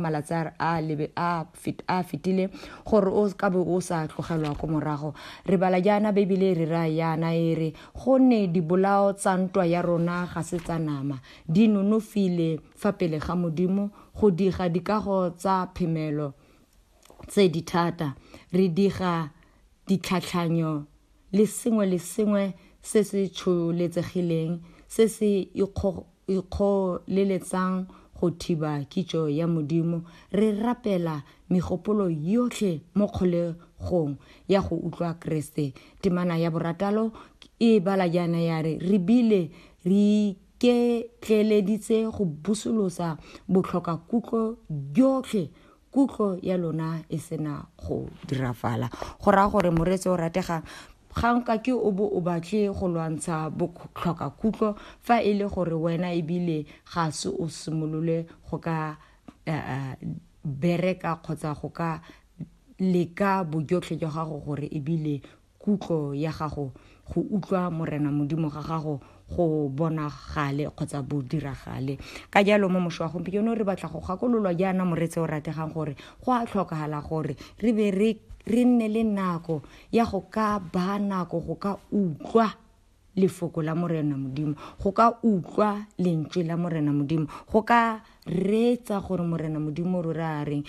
malatsi a a lebe a fit- a fetile gore o ka bo o sa tlogelwa ko morago re bala jaana beibele e re raya yana e re gonne dibolao tsa ntwa ya rona ga se tsa nama di nonofile fa pele ga modimo go diga dikago tsa phemelo tse di thata re diga ditlhatlhanyo le sengwe le sengwe se se tsholetsegileng se se ikgoleletsang go thiba kitso ya Modimo, re rapela megopolo yotlhe mo kgolegong ya go utlwa Keresete. Temana ya borataro e bala jaana ya re, Re bile re iketleeleditse go busolosa botlhokakutlo jotlhe kutlo ya lona e sena go dirafala go raya gore moreetsi o rategang ga nka ke o bo o batle go lwantsha botlhoka kutlo fa e le gore wena ebile ga se o simolole go ka eh, eh, bereka kgotsa go ka leka bojotlhe jwa gago gore ebile kutlo ya gago go utlwa morena modimo ga gago go bonagale kgotsa bo diragale ka jalo mo mošo wa gompieno re batla go gakololwa jaana moretse o rategang gore go a tlhokagala gore re be re nne le nako ya go ka ba nako go ka utlwa lefoko la morena modimo go ka utlwa lentswe la morena modimo go ka reetsa gore morena modimo rore a reng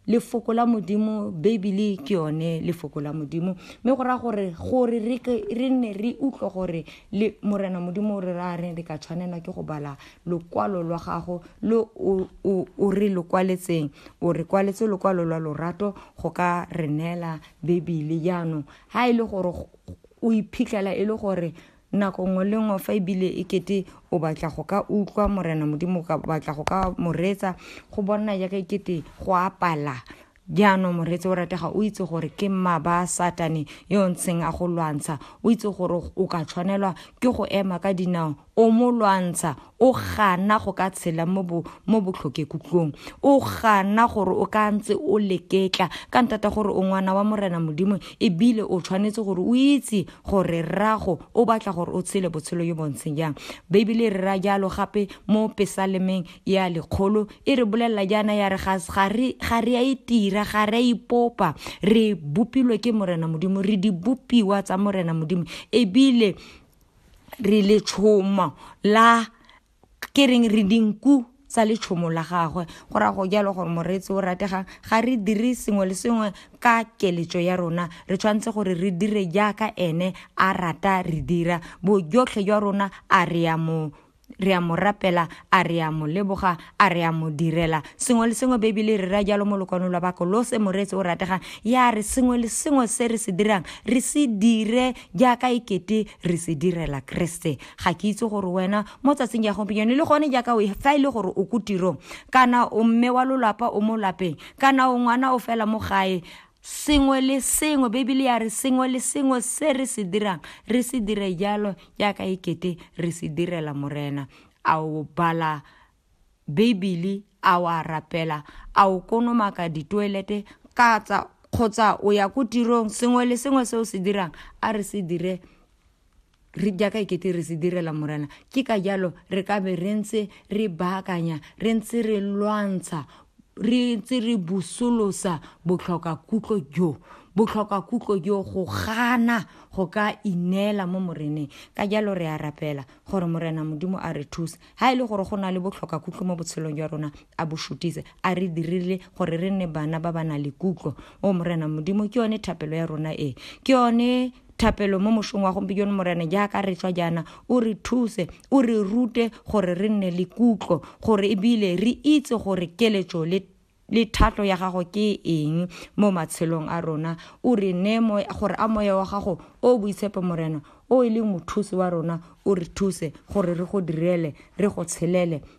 lefoko la modimo beibele ke yone lefoko la modimo mme go raya gore gore re nne re utlwe gore le morena modimo o re ra reng re ka tshwanelwa ke go bala lokwalo lwa gago le o re lo kwaletseng o re kwaletse lokwalo lwa lorato go ka re neela beibele jaanong ga e le gore o iphitlhela e le gore nako nngwe le nngwe fa ebile e kete o batla go ka utlwa morena modimo o ka batla go ka moretsa go bona jaaka e kete go apala jaanong moretse o ratega o itse gore ke mma ba satane yo ntseng a go lwantsha o itse gore o ka tshwanelwa ke go ema ka dinao o mo lwantsha o gana go ka tshela mo botlhokekutlong o gana gore o ka ntse o leketla ka ntata gore o ngwana wa morena modimo ebile o tshwanetse gore o itse gore rrago o batla gore o tshele botshelo yo bontsheng jang beibele e re ra jalo gape mo pesalemeng ya lekgolo e re bolelela jaana ya re ga re a itira ga re a ipopa re bopilwe ke morena modimo re dibopiwa tsa morena modimo ebile re letshomo la ke reng re dinku tsa letshomo la gagwe go ra go jalo gore moreetsi o rategang ga re dire sengwe le sengwe ka keletso ya rona re tshwanetse gore re dire jaaka ene a rata re dira bojotlhe jwa rona a re ya mo re a mo rapela a re a mo leboga a re a mo direla sengwe le sengwe bebele re ra jalo mo lokwano lwa bako lo se moreetse o rategang ya re sengwe le sengwe se re se dirang re se dire jaaka ekete re se direla keresete ga ke itse gore wena mo tsatsing ya gompieno le gone jaaka o fa e le gore o ko tirong kana o mme wa lolapa o mo lapeng kana o ngwana o fela mo gae Sengwe le sengwe, Bibele ya re sengwe le sengwe se re se dirang, re se dire jalo jaaka e kete re se direla Morena. A o bala Bibele, a o a rapela, a o konomaka ditoelete katsa kgotsa o ya ko tirong, sengwe le sengwe se o se dirang, a re se dire re jaaka ekete re se direla morena ke ka jalo re ka be re ntse re baakanya re ntse re lwantsha re ntse re busolosa botlhoka kutlo jo botlhoka kutlo jo go gana go ka ineela mo moreneng ka jalo re a rapela gore morena modimo a re thuse ha e le gore go na le botlhoka kutlo mo botshelong jwa rona a bo shutise a re dirile gore re nne bana ba ba na le kutlo o morena modimo ke yone thapelo ya rona e ke yone thapelo mo mosong wa gompieno morena jaaka re tswa jaana o re thuse o re rute gore re nne le kutlo gore ebile re itse gore keletso le le thatlo ya gago ke eng mo matshelong a rona o re ne gore a moya wa gago o boitshepo morena o e leng mothusi wa rona o re thuse gore re go direle re go tshelele